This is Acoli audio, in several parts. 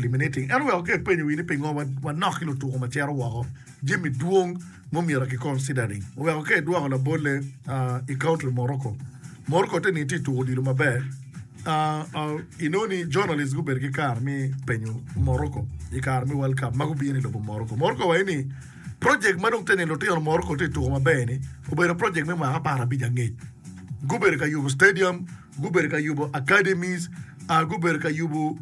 Eliminating. Ento wek oger penyo wi ni pingo wanok ki lutuko ma cito woko jami dwong ma omyero ki considering oweko ka idwoko labolle i country Morocco. Morocco te ni tye tuko odilo maber inongo ni journalist gubedo ki kare me penyo Morocco i kare me world cup ma gubino i lobo Morocco. Morocco waco ni project ma dong te ni lutino Morocco tye tuko maber ni obedo project me mwaka apar abic angec gubedo ka yubo stadium Gubedo ka yubo academies, gubedo ka yubo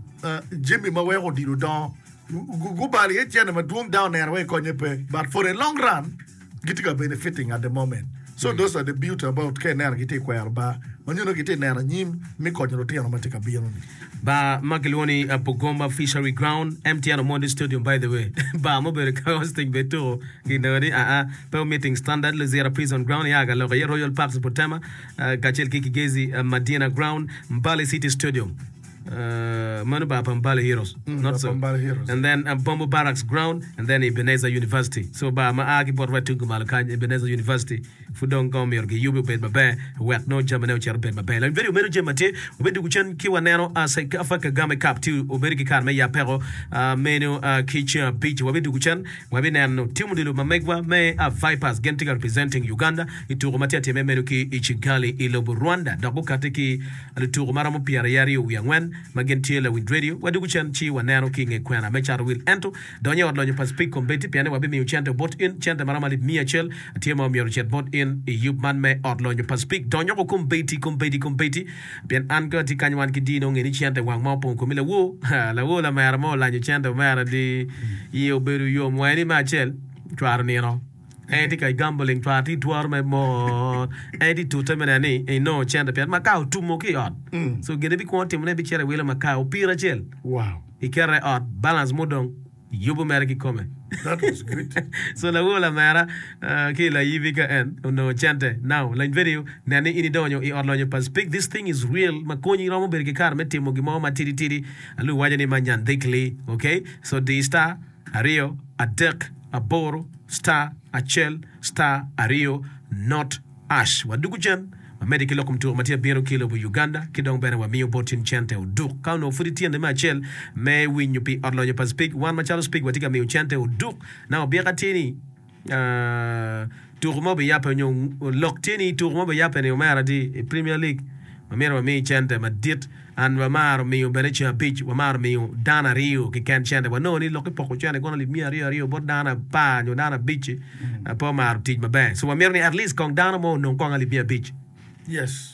jami ma weko odilo dongo. Gubalo iye cente madwong dok oneno wai konye pe. But for a long run, gitye ka benefiting at the moment. So mm. those are the beauty about ka ineno gitye kwero ba ma nyono gitye neno anyim me konyo lutino ma tye ka bino ni. Ba ma kilwongo ni uh, Bugomba Fishery Ground, MTN Omondi Stadium by the way. ba ma obedo ka hosting be tuko gineno ni aa uh, uh, pe omiting standard Luzira Prison Ground ya ka loko iye Royal Parks Butema. kacel ki Kigezi Madina Ground, Mbale City Stadium, meno bar pa Mbale Heroes, not so, and then Bombo Barracks Ground, and then Ebenezer University. So bar ma a ki bot wet tung kumalo kany, Ebenezer University, pud dong kong myero giyubi obed maber wek nongo jamine ocit obed maber. Lawiny Bedo meno jami ma tye obedo dwogo cen ki waneno CECAFA Kagame Cup tye obedo ki kare me yabbeko meno ki ceng abic-ci. Wabi dwogo cen wabi neno tim odilo ma megwa me Vipers gin tye ka representing Uganda. i tuko ma tye ka timme meno ki i Kigali i lobo Rwanda dok gukati ki lutuko ma romo pyeraryo aryo wiye angwen ma gin tye lawinj redio. Wadwogo cen ci waneno ki i nge kwena me cato wil ento donyo i ot lonyo pa Speke Combeti pien ni wabimiyo cente bot in, cente ma romo alip miya acel tye ma omyero ocit bot in i yub man me ot lonyo pa Speke. Donyoko Combeti, Combeti, Combeti pien an kong atye kany wan ki dino nge ni cente wang ma opong komi lawo, lawo lamera mo olanyo cente omera di iye obedo yom wa eni me acel cwaro nino. En tye ka gamboling twar tye twaro me mot en tye tute me neno ni enongo cente pien makar otumo ki ot so gin ebikwongo timo ne ebicito ewilo makar opira acel iketo i ot balance mudong yubo mere kikome so lawo lamera ki layibi ka en onongo cente now lony video nen ni in idonyo i ot lonyo pa speak this thing is real makonyi romo bedo ki kare me timo gin mo matidi tidi alu waco ni manyan dhikli okay so di star aryo, adek, aboro, star, acel, star, aryo, not, ash. Wadwogo cen. Wamedde ki loko mutuka ma tye abiro ki lobo Uganda ki dong bene wamiyo bot in cente oduk. Ka onongo pud ityene me acel me winyo pi Ot Lonyo pa Spig, wan macalo Spig watye ka miyo cente oduk. Nang obyeka tye ni, Tuku ma obiyabbe nyo lok tye ni tuku ma obiyabbe ni omera tye i Premier League wamito wami cente madit and wamaro miyo bene ceng abic wamaro miyo dano aryo keken cente wanongo ni lok ipoko cente kono lib miya aryo aryo bot dano apar nyo dano abic pe omaro tic maber so wamito ni at least kong dano mo onong kong alib miya abic.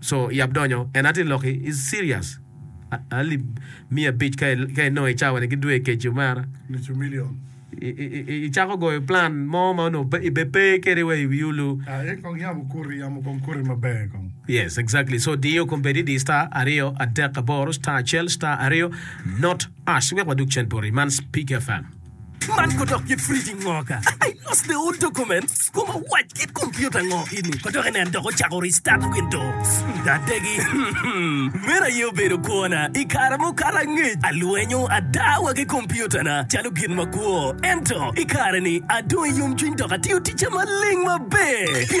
So yab donyo en atir loki is serious alip miya abic ka inongo i cawa ni ki dwe keci omera i cako goyo plan mo ma onongo pe i be pe kede wa i wi olu yes exactly so diyo kombedi di star aryo adek aboro star acel star aryo not ash wek wadug cen poti man speak fm. Man ko dok kit fridge ngo ka? I lost the old documents kom awac kit computer ngo ini ko dok inen dok ocako restart windows nga adegi Meno aye obedo kwona i kare mukato angec alwenyo ada wa ki computer na calo gin makwo ento i kare ni adong i yomcwiny dok atiyo ticca maleng maber pien